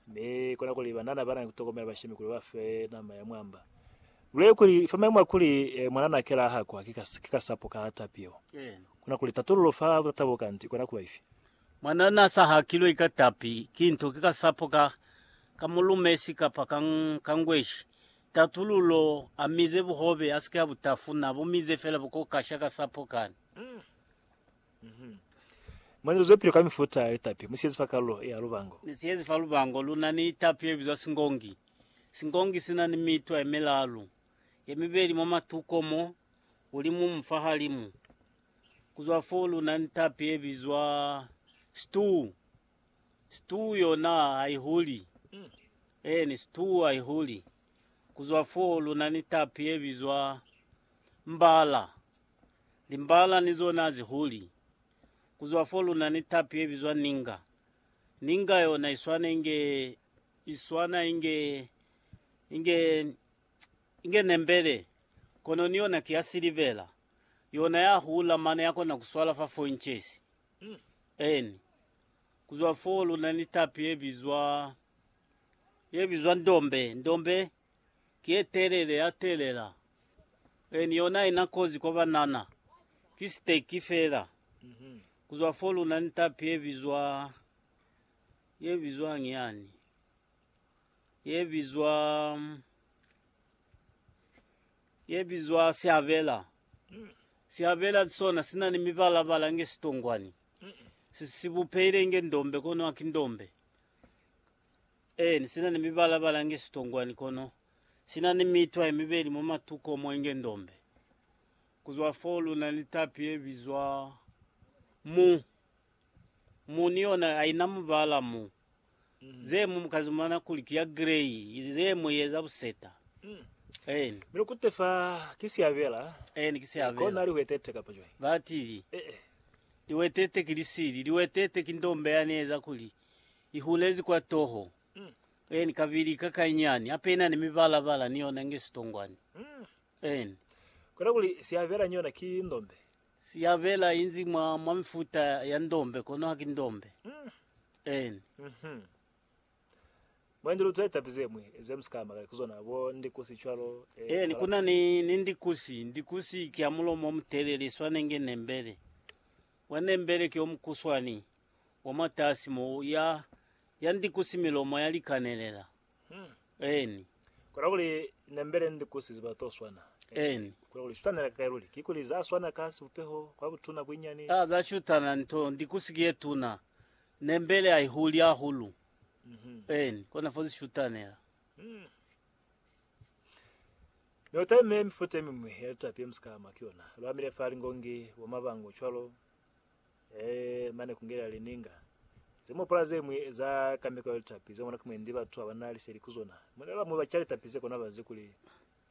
Mi kona kuli banana bana ni kutokomela bashemi kuli ba fe nama ya mwamba. Lule kuli, fa maimu a kuli mwanana kela a hakwa ki kasapo ka tapi yeo, kona kuli tatululo fa butata bo kanti ikona kuba ifi? Mwanana a sa hakilwe ka tapi ki nto, ki kasapo ka ka mulumesi kapa ka ngweshi. Tatululo, A mize buhobe, a si ke a bu tafuna, a bu mize fela bu ko kasha kasapo kani. Mwa nzila zwepili kwa mifuta ya litapi mu siyezi fa kalulo ya lubango. Ni siyezi fa lubango lu na ni litapi ye bizwa singongi. Singongi si na ni mitwa ye milalu, ye mibeli mwa matuko mo, ulimumu fa halimu. Ku zwa fo lu na ni litapi ye bizwa situu. Situu yona ha i huli. Eeni, situu ha i huli. Ku zwa fo lu na ni litapi ye bizwa mbala. Limbala ni zona zi huli. Ku zwa fo lu na ni tapi ye bizwa ninga. Ninga yona i swana inge, i swana inge, inge, inge nembele, kono ni yona ki ya silivera. Yona ya hula mane ya kona ku swala fa four inches. Eeni. Ku zwa fo lu na ni tapi ye bizwa, ye bizwa ndombe, ndombe. Kiye telele ya telela and yona ina kozi kwa banana. Ki stake fela. Kuzwa fo luna ni tapi ye bizwa ye bizwang yani? Ye bizwa ye bizwa siabela. Siabela sona sina ni mibala bala nge sitongwani. Si sibupeile nge ndombe kono aki ndombe. Eeni, sina ni mibala-bala inge sitongwani kono sina ni mitwa yemibeli mwa matuko mo inge ndombe. Kuzwa foo luna ni tapi yebizwa mu. Mu ni yona haina mubala mu. Zeñwi mukazimana kuli ki ya grey, zeñwi ye za buseta. Eeni. Mi lukute fa ki siabela. Eeni, ki siabela. Kona lihwetete kapa cwañi? Batili, Ee. lihwetete ki lisili, lihwetete ki ndombe yani yeza kuli I hulezi kwa toho, en, kabili kakainyani, hape ina ni mibala-bala ni yona inge sitongwani. En. Kona kuli siabela ni yona ki ndombe. Siabela inzi mwa, mwa mifuta ya ndombe, kono haki ndombe. En. Mhm. Mwendi lu tweta pi zemwi ze musika ama kale ku zona, bo ndikusi cwalo, eh, En, kuna kalapusi. ni, ni ndikusi. Ndikusi ki ya mulomo omutelele, iswana inge nembele. Mwa nembele ki omukuswani. wa mwatasi mo ya, ya ndikusi milomo ya likanelela. Eni. Kona kuli nembele ndikusi ziba to swana. Eni. Kona kuli shutanela kakai luli. Kikuli za swana ka sibupeho, kwa butuna, buinyani. A, za shutana nto, ndikusi ki ye tuna. Nembele a i huli hahulu. Eni. Kona fo zi shutanela. Mi utaime mifuta yemimwi ya litapi yemusika ama ki yona. Lu amile fa lingongi, bwa mabango, cwalo. Ee, mane kungelela lininga zemopola zemwi za kameko ya litapi zemona ki mwendi batu abana liseli ku zona. Mwendi bamwi baca litapi ze kona bazi kuli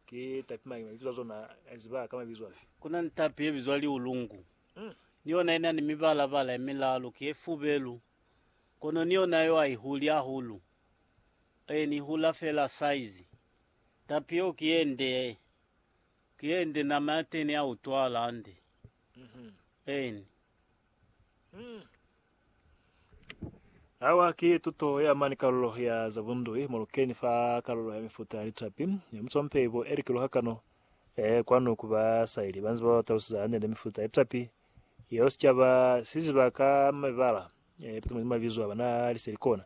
ki tapi mañi, mabizo a zona aziba ka mabizo afi. Kuna ni tapi yebizwa liulungu. Mm. Ni yona ina ni mibala-bala ye milalu, ki ye fubelu, kono ni yona yo aihuli hahulu. Ee, ni hula fela saizi. Tapi yeo ki yende, ki yende nama yateni ya utwala hande. N. Awa ki tuto ya mani kalulo ya za bundui mo lukeni fa kalulo ya mifuta ya litapi ya musompe ibo e likiluha kano. E, kwanu ku ba sa ili banzi ba ba talusiza hande nde mifuta ya litapi yeo sicaba si ziba ka mibala e pitimodi mabizo a ba na liseli kona.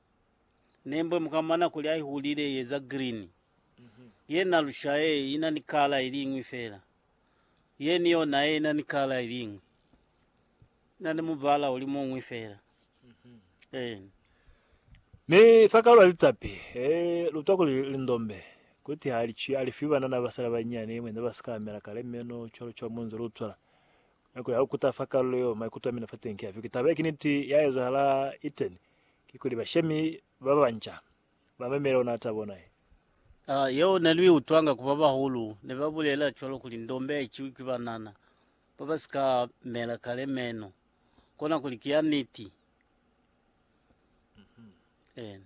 Nembwe mukamana kuli aihulile ye za green. Yena lusha ye ina ni kala iliñwi fela. Ye ni yona ye ina ni kala iliñwi. Ina ni mubala uli muñwi fela. Eena. Mi fa kalwa litapi, e lutwa kuli lindombe, kuti ha li cwi, a li fi banana ba sala banyinyani, mwe ne ba si ka amela kale meno, cwalo cwalo mu nze lu cwala. Mi kuli ha lu kuta fa kalulo yeo, maikuto a mina fa teñi ki afi, Ki taba ye, ki niti, ya ezahala, iteni. kikuli bashemi babanca bamemela ona tabo ona ye. A Yeo neluiutwanga ku babahulu nebabulela cwalo kuli ndombe haiciwi ki banana babasika mela kale meno, kona kuli ki ya niti. Eena.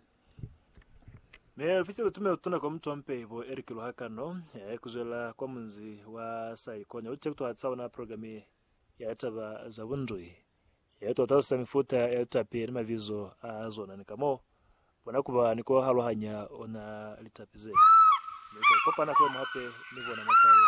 Mi ofisi utume utuna kwa mutu wa mpeibo Eric Luhakano eh, kuzwelela kwa munzi wa Saikonya, uti kutuhatisa ona programe ya taba za bundui. Ye tota sa mifuta ya litapi ni mabizo a zona ni ka mo bona ku ba ni ku aluhanya ona litapi ze. Mi u ka kopana kwe'mu hape ni bona mwa kale.